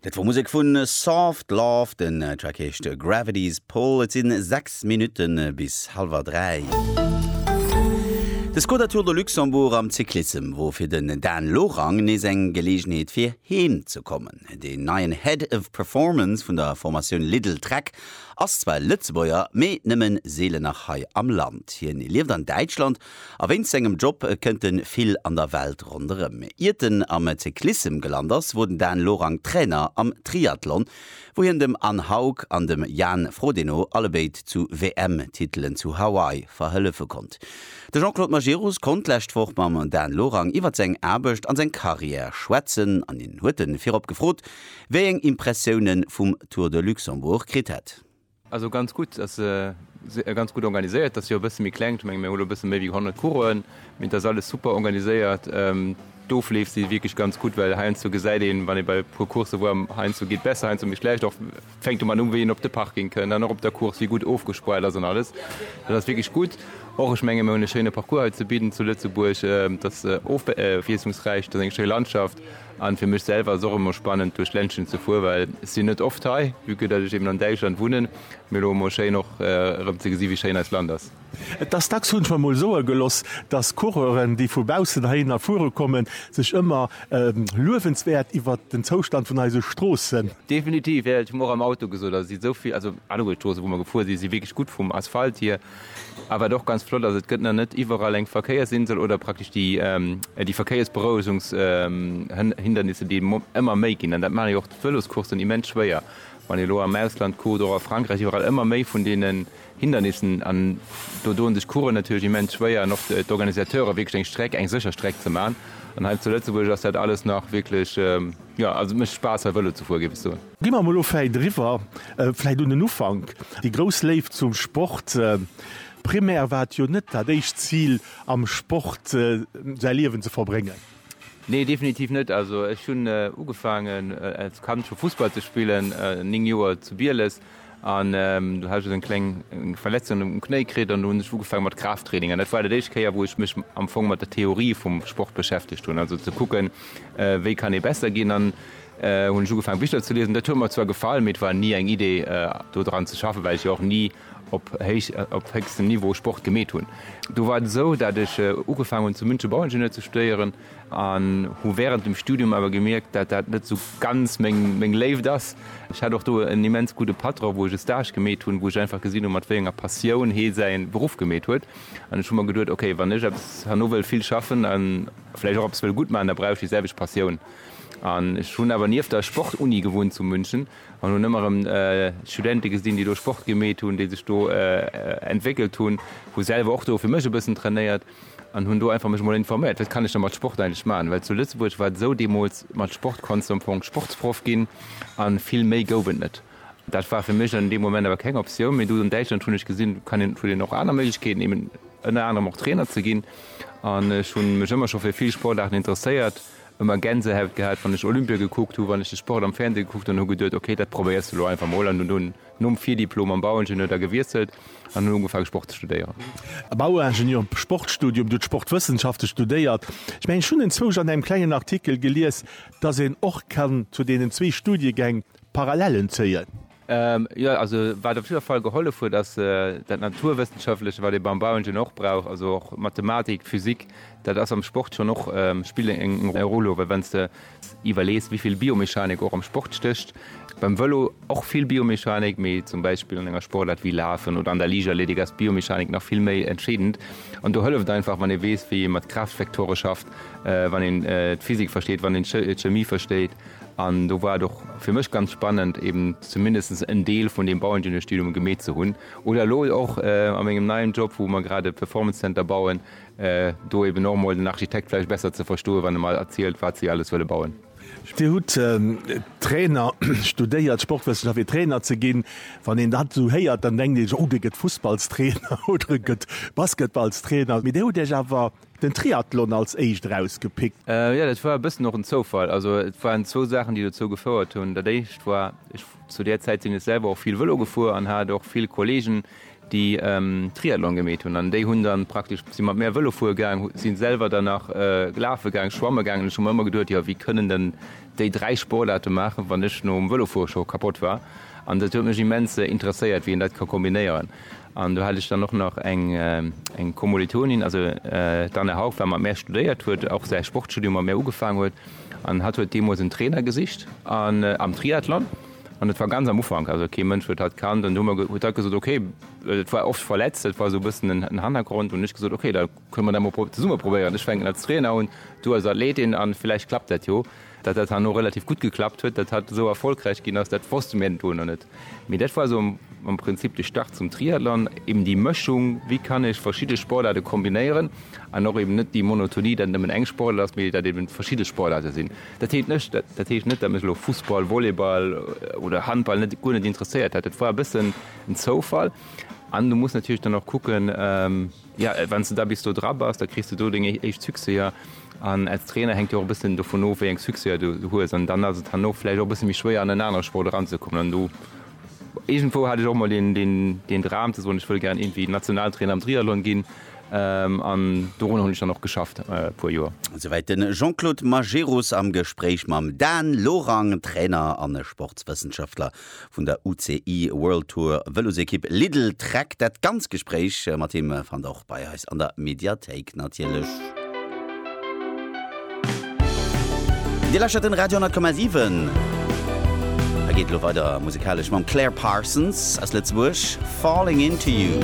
Dat wor Musek vu Soft Love, den Track heescht Gravity's Pull. Et sinn 6 Minutte bis halwer 3. De Skoda Tour de Luxembourg am Cyclissem wor fir den Dan Lorang nees eng Geleegenheet fir heem ze kommen. Deen neien Head of Performance vun der Formatioun Lidl Trek ass zwar Lëtzebuerger, mee nëmmen seelen nach hei am Land. Hien lieft an Däitschland A wéinst sengem Job kënnt en vill an der Welt ronderëm. Iert en am Cyclissem gelant ass, wor den Dan Lorang Trainer am Triathlon, wou hien dem Anne Haug an dem Jan Frodeno allebéid zu WM-Titelen zu Hawaii verhëllefe konnt. De Jean-Claude Majerus konnt d'lescht Woch mam Dan Lorang iwwer seng Aarbecht an seng Carrière schwätzen an hien huet en virop gefrot, wéi eng Impressiounen vum Tour de Luxembourg kritt hätt. Also ganz gutt, ass ganz gutt organiséiert, dat ass jo e bësse méi kleng, ech menge mir hu lo e bësse méi wéi 100 Coursen, mee et ass alles super organiséiert. D'Ofleef si wierklech ganz gutt, well heiansdo gesäit een, wann ee bei e puer Coursse woar, heiansdo geet besser, heiansdo méi schlecht, och fänkt domat u wéi een op de Parking kënnt an och op der Course wéi gutt ofgespoilt ass an alles. Dat ass wierklech gutt. Och ech menge mir hunn e schéine Parcours hei ze bidden zu Lëtzebuerg, dat ass ofwiesslungsräich, dat ass eng schéi Landschaft. An fir mech selwer ass och emmer spannend duerch d'Ländchen ze fuer, well ech sinn net oft hei, vue que dat ech eben an Däitschland wunnen, mee elo emmer schéin och erëm ze gesi wéi schéin eist Land ass. Et ass dacks, hunn ech mer mol soe geloss, dass Coureuren déi vu baussen heihinner fuere kommen, sech ëmmer luewenswäert iwwert den Zoustand vun eise Stroossen. Definitiv, jo, ech hu mer och am Auto gesot, also et sinn esou vill, also alleguer d'Stroosse wou mer gefuer sinn, si wierklech gutt vum Asphalt hier. A wat och ganz flott ass, et gëtt nach net iwwerall eng Verkéiersinsel oder praktesch déi déi Verkéiersberouegungs hindernisse déi ëmmer méi ginn, an dat maachen jo och d'Vëloscoursen immens schwéier, wann ee lo am Ausland kuckt, och a Frankräich, iwwerall ëmmer méi vun deenen Hindernissen, an do doen sech d'Coureuren natierlech immens schwéier an och d'Organisateure wierklech eng Streck, eng sécher Streck ze maachen, an hei zu Lëtzebuerg ass dat alles nach wierklech, jo also et mécht Spaass hei Vëlo ze fueren, géif ech soen. Gi mer mol elo vläit eriwwer, vläit un den Ufank, déi grouss Léift zum Sport. Primär war et jo net dat éischt Zil, am Sport säi Liewen ze verbréngen. Nee, definitiv net. Also ech hunn ugefaangen als Kand scho Fussball ze spillen, néng Joer zu Bieles. An do hat ech esou eng kleng Verletzung um Knéi kritt an do hunn ech ugefaange mat Kraafttraining. An dat war dat éischt Kéier, wou ech mech am Fong mat der Theorie vum Sport beschäftegt hunn. Also ze kucken, wéi kann ee besser ginn. An hunn ech ugefaangen Bicher ze liesen. Dat huet mer zwar gefall, mee et war ni eng Idee do dran ze schaffen, well ech jo och ni op héich, op héchstem Niveau Sport gemeet hunn. Do war et esou, dat ech ugefaangen hunn zu München Bauingenieur ze studéieren an hu wärend dem Studium awer gemierkt, dat dat net esou ganz meng, meng Léift ass. Ech hat och do en immens gudde Patron, wou ech e Stage gemeet hunn, wou ech einfach gesinn hunn, mat wéi enger Passioun hee säi Beruff gemeet huet. An ech hu mer geduet, okay, wann ech eppes herno wëll vill schaffen a vläicht och eppes wëll gutt maachen, da brauch ech déi selwecht Passioun. An ech hunn awer nieft der Sportuni gewunnt zu München an hunn ëmmer erëm Studente gesinn, déi do Sport gemeet hunn, déi sech do entwéckelt hunn. Hu selwer och do fir mech e bëssen trainéiert an hunn do einfach mech emol informéiert, wat kann ech da mat Sport eigentlech maachen. Well zu Lëtzebuerg war et esou, deemools mat Sport konns de am Fong Sportsproff ginn a vill méi gouf et net. Dat war fir mech an deem Moment awer keng Optioun. Mee do an Däitschland hunn ech gesinn, kann een, et huet een och aner Méiglechkeeten, eben ënner anerem och Trainer ze ginn. An ech hu mech ëmmer scho fir vill Sportaarten interesséiert, ëmmer Gänsehaut gehat wann ech Olympia gekuckt hu, wann ech de Sport am Fernseh gekuckt hun an hu geduet ok dat probéiers de lo einfach mol an hun dunn nom Virdiplom am Bauingenieur da gewiesselt an hun ugefaang Sport ze studéieren. Bauingenieur am Sportstudium, du hues Sportwëssenschafte studéiert. Ech mengen ech hun enzwousch an engem klengen Artikel gelies, dass een och kann zu deenen zwee Studiegäng Parallellen zéien. Jo, also wat op jidder Fall gehollef huet, ass dat Naturwëssenschaftleche, wat ee beim Bauen jo och brauch, also och Mathematik, Physik, dat ass am Sport schonn och, spillt eng Roll. Well wann s de iwwerlees, wéi vill Biomechanik och am Sport stécht, beim Vëlo och vill Biomechanik, mee zum Beispill an enger Sportaart wéi Lafen oder an der Liichtathletik ass d'Biomechanik nach vill méi entscheedend. An do hëlleft einfach, wann ee weess, wéi ee mat Kraaftvektore schafft, wann een d'Physik versteet, wann een d'Chemie versteet. An do war et och fir mech ganz spannend, eben zumindest en Deel vun deem Bauingenieur-Studium gemeet ze hunn oder elo och a mengem neien Job, wou mer grad e Performance Center bauen, do eben och emol den Architekt vläicht besser ze verstoen, wann e mer erzielt, wat si alles wëlle bauen. Dir hutt Trainer studéiert, Sportwëssenschaft, fir Trainer ze ginn. Wann een dat esou héiert, dann denkt ee sech, oh, dee gëtt Fussballstrainer oder e gëtt Basketballstrainer. Mee Dir hutt Iech awer Den Triathlon als éischt erausgepickt. Jo, dat war e bëssen och en Zoufall. Also et waren zwou Saachen, déi dozou gefouert hunn. Dat éischt war, ech, zu där Zäit sinn ech selwer och vill Vëlo gefuer an hat och vill Kollegen, déi Triathlon gemeet hunn. An déi hunn dann praktesch, si mat mär Vëlo fuere gaang, si selwer dann nach lafe gaang, schwamme gaang. An ech hu mer ëmmer geduet, jo, wéi kënnen dann déi dräi Sportaarte maachen, wann ech nom Vëlofuere scho kapott war? An dat huet mech immens interesséiert, wéi een dat ka kombinéieren. An do hat ech dann och nach eng Kommolitonin, also d'Anne Haug wat mat mär studéiert huet, och säi Sportstudium mat mär ugefaangen huet. An hatt huet deemools en Trainer gesicht am Triathlon. An et war ganz am Ufank, also kee Mënsch huet hatt kannt. An du huet hatt gesot, okay, et war oft verletzt, dat war esou e bëssen den Hannergrond. Hunn ech gesot, okay da Kënne mer dat mol zesumme probéieren. Ech fänken als Trainer un, du als Athletin an villäicht klappt dat jo. Datt dat herno relativ gutt geklappt huet, datt hatt esou erfolgräich ginn ass, dat wosste mir do nach net. Mee dat war esou am Prinzip de Start zum Triathlon, eben déi Mëschung, wéi kann ech verschidde Sportaarte kombinéieren an och eben net déi Monotonie, datt et nëmmen eng Sportaart ass, mee datt eben verschidde Sportaarte sinn. Dat heet net, dat heescht net, datt mech elo Fussball, Volleyball oder Handball net, guer net interesséiert hätt. Dat war e bëssen en Zoufall an du muss natierlech dann och kucken, Jo, wann s de da bis do dra bass, da kriss de do deng éischt Succèser. An als Trainer hänkt jo och e bëssen dovun of, wéi eng Succèser du hues. An dann ass et herno vläicht och e bësse méi schwéier, an en anere Sport eranzekommen. An do, iergendwou hat ech och emol deen Dram ze soen, ech wëll gären iergendwéi Nationaltrainer am Triathlon ginn. An dorunner hunn ech dann och geschafft e puer Joer. Souwäit de Jean-Claude Majerus am Gespréich mam Dan Lorang, Trainer a Sportswëssenschaftler vun der UCI World Tour Vëlosekipp Lidl Trek. Dat ganz Gespréich mat him fannt der och bei eis an der Mediathéik natierlech. Dir lauschtert den Radio 10,7. Et geet elo weider musekalesch mam Claire Parsons aus Lëtzebuerg, Falling Into You.